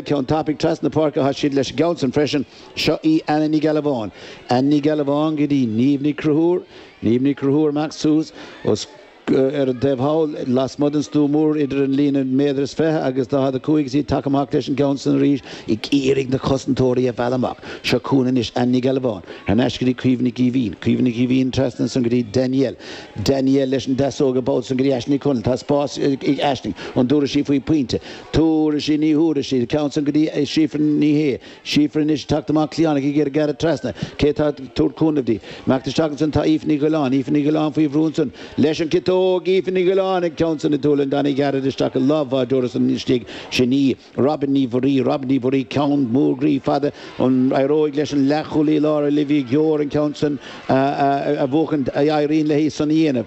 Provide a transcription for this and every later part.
Ceann tapaidh trasna páirce atá siad leis an gceann san freisin. Seo í Anna Ní Ghealbháin. Anna Ní Ghealbháin go dtí Niamh Ní Cruthúr. Niamh Ní Chonchúir amach suas fós ar an dtaobh thall lasmuigh den stua mór idir an líne méadar is fiche agus daichead a cúig is í tagtha amach leis an gceann san arís ag iarraidh na cosantóirí a mhealladh amach. Seo chugainn anois Anna Ní Ghealbháin. Thar n-ais go dtí Caoimhe Nic Aoibhín. Caoimhe Nic Aoibhín trasna ansan go dtí Danielle. Danielle leis an deasóg i bhfad san go dtí Aisling Ní Chonaill. Tá spás ag Aisling. An dtabharfaidh sí faoi phointe? Tabharfaidh sí ní thabharfaidh sí an ceann san go dtí Síofra Ní Shé. Síofra anois ag teacht amach cliathánach ag iarraidh gearradh trasna. Cé atá ag tabhairt cúnaimh di. Imeacht isteach ansan tá Aoife Ní Dhuilleáin. Aoife Ní Dhuilleáin faoi bhrú ansan. Leis an gciotóg! Aoife Ní Dhuilleáin an ceann san a thiomáint tháinig gairid isteach i lámha an bháideora ansan istigh. Sin í. Robyn Ní Mhuirí. Robyn Ní Mhuirí ceann mór groí fada. An éireoidh leis an leathchúlaí láir Olivia Gore an ceann san a bhuachaint? Éiríonn léi san a dhéanamh.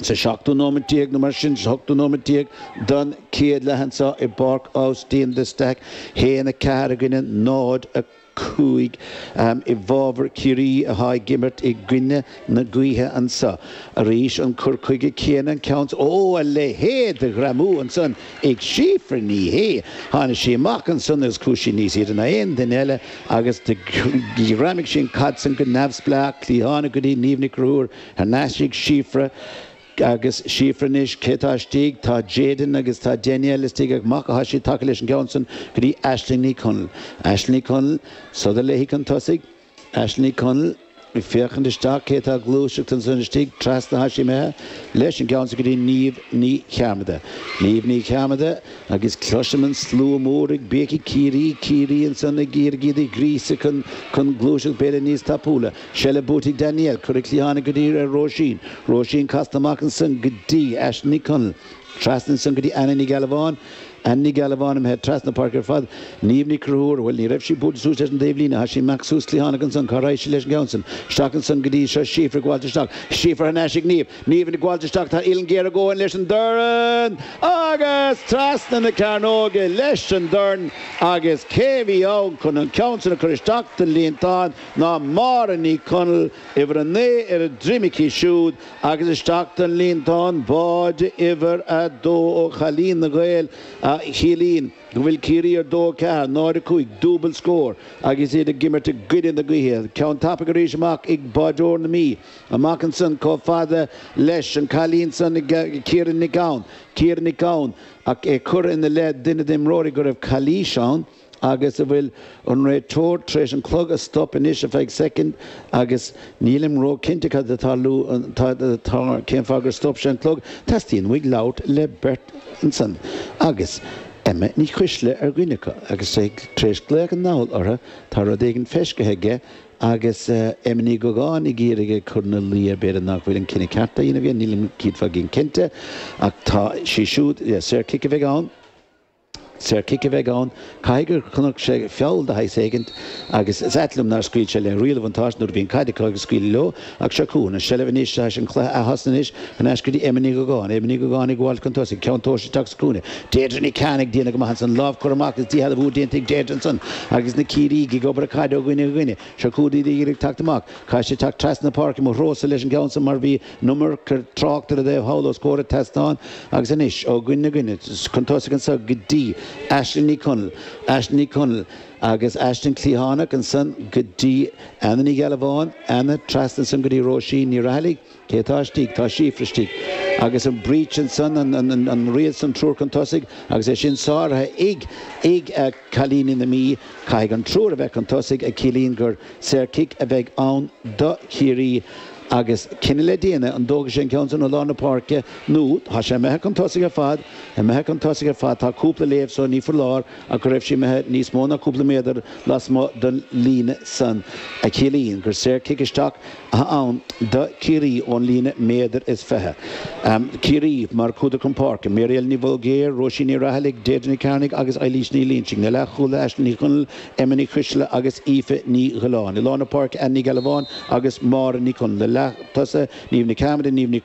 Sa seachtú nóimeat déag nó mar sin, sa hochtú nóimeat déag den chéad leath anseo i bPáirc Austin de Staic, a haon 4 i gcoinne 0, 5 i bhfabhar Chiarraí atá ag imirt i gcoinne na gaoithe anseo. Arís an cur chuige céanna, an ceann is, oh, a leithéid de ghreamú ansan ag Síofra Ní Shé! Tháinig sí amach ansan agus chuaigh sí níos airde ná aon duine eile agus ghreamaigh sí an chaid san go neamhspleách, cliathánach go dtí Niamh Ní Chonchúir. Thar n-ais ag Síofra agus Síofra anois, cé atá istigh? Tá Jadyn agus tá Danielle istigh ach amach atá siad tagtha leis an gceann san go dtí Aisling Ní Chonaill. Aisling Ní Chonaill, sodar léi chun tosaigh. Aisling Ní Chonaill, ag féachaint isteach, cé atá ag gluaiseacht ansan istigh? Trasna atá sí imithe leis an gceann san go dtí Niamh Ní Chearmada. Niamh Ní Chearmada, agus cloisim an slua mór ag béicigh Ciarraí, Ciarraí ansan ag iarraidh iad a ghríosadh chun gluaiseacht b'fhéidir níos tapúla. Seilbh buaite ag Danielle, curtha cliathánach go dtí Róisín, Róisín casta amach ansan go dtí Aisling Ní Chonaill, trasna ansan go dtí Anna Ní Ghealbháin, Anna Ní Ghealbháin imithe trasna na páirce ar fad, Niamh Ní Chonchúir, bhuel ní raibh sí buailte suas leis an dtaobhlíne, tá sí amach suas cliathánach ansan, cá raghaidh sí leis an gceann san? Isteach ansan go dtí, seo Síofra ag gabháilt isteach, Síofra thar n-ais ag Niamh, Niamh ag gabháilt isteach, tá uillinn ghéar ag gabháil leis an dorn agus trasna na cearnóige leis an dorn agus cé a bhí ann chun an ceann san a chur isteach don líontán ná Máire Ní Chonaill, uimhir 9, ar a droim aici siúd agus isteach don líontán báid uimhir 2 ó chailín na nGael a chiallaíonn go bhfuil Ciarraí ar dó, ceathair, náid, a cúig, dúbailt scór agus iad ag imirt i gcoinne na gaoithe. Ceann tapaidh arís amach ag báideoir na Mí. Amach ansan chomh fada leis an cailín san Ciara Nic Gabhann. Ciara Nic Gabhann, ach é curtha ina leith duine d'imreoirí go raibh calaois ann. agus an bhfuil an réiteoir tar éis an clog a stop anois ar feadh soicind agus nílim ró-chinnte cad atá lu atá cén fáth gur stop sé an clog, teastaíonn uaidh labhairt le beirt ansan agus Emma Ní Choisdealbha ar dhuine acu agus é tar éis glaoch anall orthu, tá rud éigin feiscithe aige agus Emma Ní Dhúgáin ag iarraidh ag cur ina luí air b'fhéidir nach bhfuil an cinneadh ceart á dhéanamh aige, nílim céad faoin gcéad cinnte ach tá sé siúd, yeah, saor chic a bheidh ann. Saor cic a bheidh ann. Caithfidh gur chonaic sé feall de shaghas éigin, agus is ait liom nár scaoil sé le riail an bhuntáiste nuair a bhí an caid acu ag scaoileadh leo, ach seo chugainn an seilbh anois, agus an cluiche atosnaithe anois, thar n-ais go dtí Emma Ní Dhúgáin. Emma Ní Dhúgáin ag gabháil chun tosaigh, ceann tomhaiste isteach sa chúinne, Deirdre Ní Chearnaigh ag déanamh go maith ansan, lámh curtha amach agus díshealbhú á déanta ag Deirdre ansan agus na Ciarraígh ag obair na caide ó dhuine go duine. Seo chugainn Deirdre ag teacht amach. Caithfidh sí teacht trasna na páirce, mo threo-sa leis an gceann san mar bhí an iomarca tráchta ar an dtaobh thall os comhair an tseastáin agus anois ó dhuine go duine chun tosaigh anso go dtí Aisling Ní Chonaill, Aisling Ní Chonaill agus Aisling cliathánach, ansan go dtí Anna Ní Ghealbháin, Anna, trasna ansan go dtí Róisín Ní Rathallaigh, cé atá istigh? Tá Síofra istigh. Agus an breach ansan, an, an, an, an riail san, triúr chun tosaigh agus é sin sáraithe ag, ag cailíní na Mí, caithfidh an triúr a bheith chun tosaigh a chiallaíonn gur saor cic a bheidh ann do Chiarraí. agus cinneadh le déanamh, an dtógfaidh sé an ceann sin ó lár na páirce nó tá sé imithe chun tosaigh ar fad, imithe chun tosaigh ar fad, tá cúpla léamh so, ní foláir ach go raibh sí imithe níos mó ná cúpla méadar lasmuigh den líne san, a chiallaíonn gur saor cic isteach atá ann do Chiarraí ón líne méadar is fiche. Ciarraí mar chuadar chun páirce, Mary Ellen Ní Bhulgaeir, Róisín Ní Rathallaigh, Deirdre Ní Chearnaigh agus Eilís Ní Loingsigh, na leathchúlaithe, Aisling Ní Chonaill, Emma Ní Choisdealbha agus Aoife Ní Dhiolláin. I lár na páirce, Anna Ní Ghealbháin agus Máire Ní Chonaill. Na leatosaithe, Niamh Ní Chearmada, Niamh Nic.